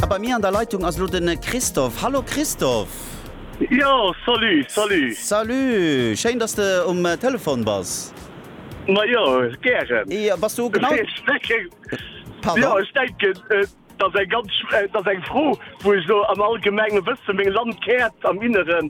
A bei mir an der Leitung ass elo den Christophe. Hallo Christophe. Jo, salut, salut. Salut, schéin dass de um Telefon bass. Ma jo, gären. Jo, bass du genau. Ech denken, jo, ech denken, et ass eng ganz, et ass eng Fro, wou ech elo am allgemengen Wëssen, meng Landkaart am Inneren,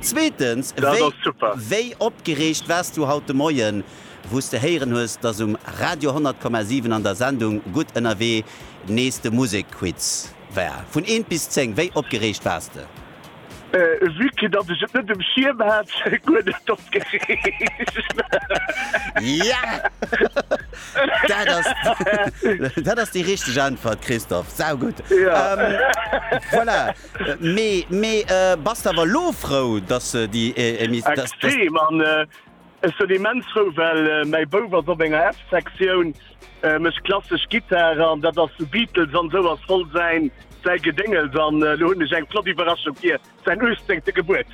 Zweetens, wéi opgereegt waars du haut de Moien, wou s de héieren hues, dass um Radio 100,7 an der Sendung Gutt ënnerwee nees de Musekquiz war? Vun eent bis zéng, wéi opgereegt waars de? Vue que dass ech et net um Schierm hat, guer net opgereegt. Dat ass déi richteg Äntwert, Christophe. Saugutt. Voilà. Mee, mee bass de awer elo frou, dass se déi Emissioun, dass, dass. Extrem, an ech sinn immens frou, well mäi Bouf ass op enger F-Sektioun, mécht klassesch Gittar, an dat ass Beatles an esou ass voll säin, säi Gedéngels, an elo hunn ech eng flott Iwwerraschung fir säin 18. Gebuertsdag.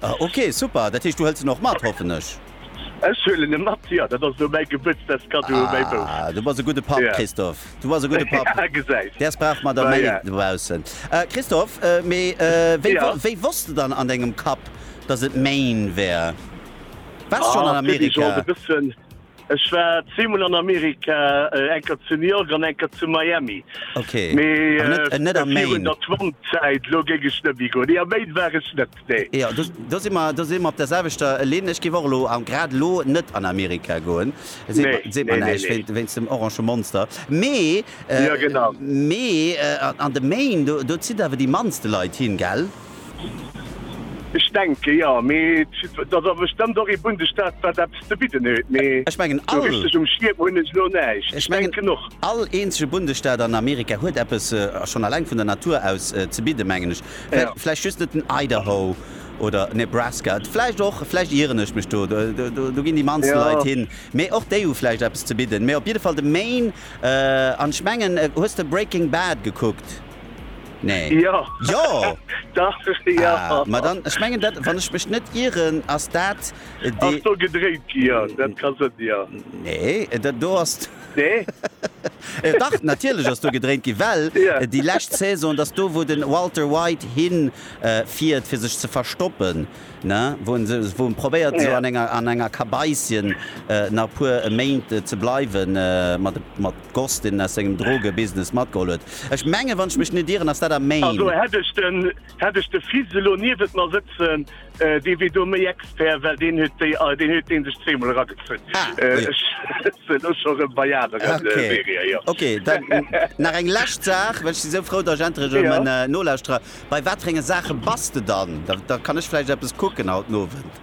Ah ok, super. Dat heescht du hëls en och mat, hoffen ech? Ech huelen e mat, jo. Dat ass elo mäi Gebuertsdagskaddo u mäi Bouf. Ah, du bass e gudde Papp, Christophe. Du bass e gudde Papp. Ah, gesäis. Däers brauch mer der méi dobaussen. Christophe, mee wéi, wéi wosst de dann an dengem Kapp, dass et Maine wär? Waars schonn an Amerika? Ech war zweemol an Amerika, eng Kéier zu New York an eng Kéier zu Miami. Mee virun der Trump-Zäit, elo géing ech net méi goen. Nee, a Maine war ech net, nee. Jo, do si mer, do si mer op der selwechter Linn. Ech géif och elo, grad elo, net an Amerika goen. Seet mer näischt, wéinst dem orange Monster. Mee, mee an de Maine, do zitt awer déi mannste Leit hin, gell? Ech denke jo, mee et ass awer bestëmmt och ee Bundesstaat wat eppes ze bidden huet, mee Ech mengen sou all, richteg um Schierm hunn ech elo näischt. ech Ech mengen denken och. all eenzege Bundesstaat an Amerika huet eppes, a schonn alleng vun der Natur aus, ze bidden, mengen ech. Vläi, Ja. vläicht just net den Idaho oder Nebraska, vläicht och, vläicht ieren ech mech do, do, do ginn déi mannst Ja. Leit hin, mee och déi hu vläicht eppes ze bidden. Mee op jidde Fall de Maine, an ech mengen, hues de Breaking Bad gekuckt? Nee. Ja. Jo! Dach, ja. Ah, ma dann, ech mengen dat, wann ech mech net ieren, ass dat dee. Ass do gedréint gi, ja. Dat ka sënn, ja. Nee, dat do ass. Nee? Dach, natierlech ass do gedréint gi, well déi lescht Saison, et ass do, wou de Walter White hin fiert, fir sech ze verstoppen, ne? Wou en se, wou en probéiert esou an enger, an enger Kabaisschen nach e puer Méint ze bleiwen, mat, mat. Goss, deen aus sengem Drogebusiness matgeholl huet. Ech mengen, wann ech mech net irren, ass dat am Maine. Also hätt ech de Fils elo niewent mer sëtzen, dee wier do méi Expert, well deen huet dee sech zweemol eragezunn. Ech sëtze elo scho rëm bei aneren Serië, jo. Ok, dann nach eng lescht Saach, well ech si sou frou, datt ech endlech erëm en Nolauschtrer. Bei waterenge Saache bass de dann? Da kann ech vläicht eppes kucken haut Nowend.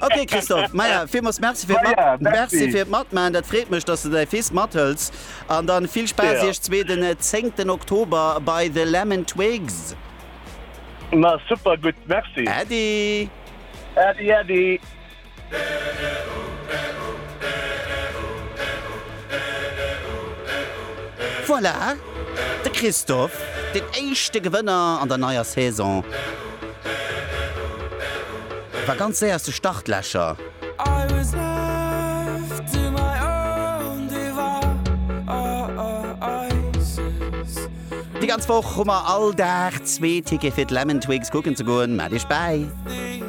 Okay Christophe Meier Villmools Merci fir d'Mat Meier, merci. Merci fir d'Matman, dat freet mech, datt du däi Fils mathëls an dann vill Spaass Ja. iech zwee den 10 Oktober bei The Lemon Twigs. Ma super gutt, merci. Äddi! Äddi äddi. Voilà! De Christophe, den éischte Gewënner an der neier Saison, war ganz séier aus de Startlächer. Déi ganz Woch hu mer all Dag zwee Tickete fir d'Lemon Twigs kucken ze goen. Mellt Iech bäi!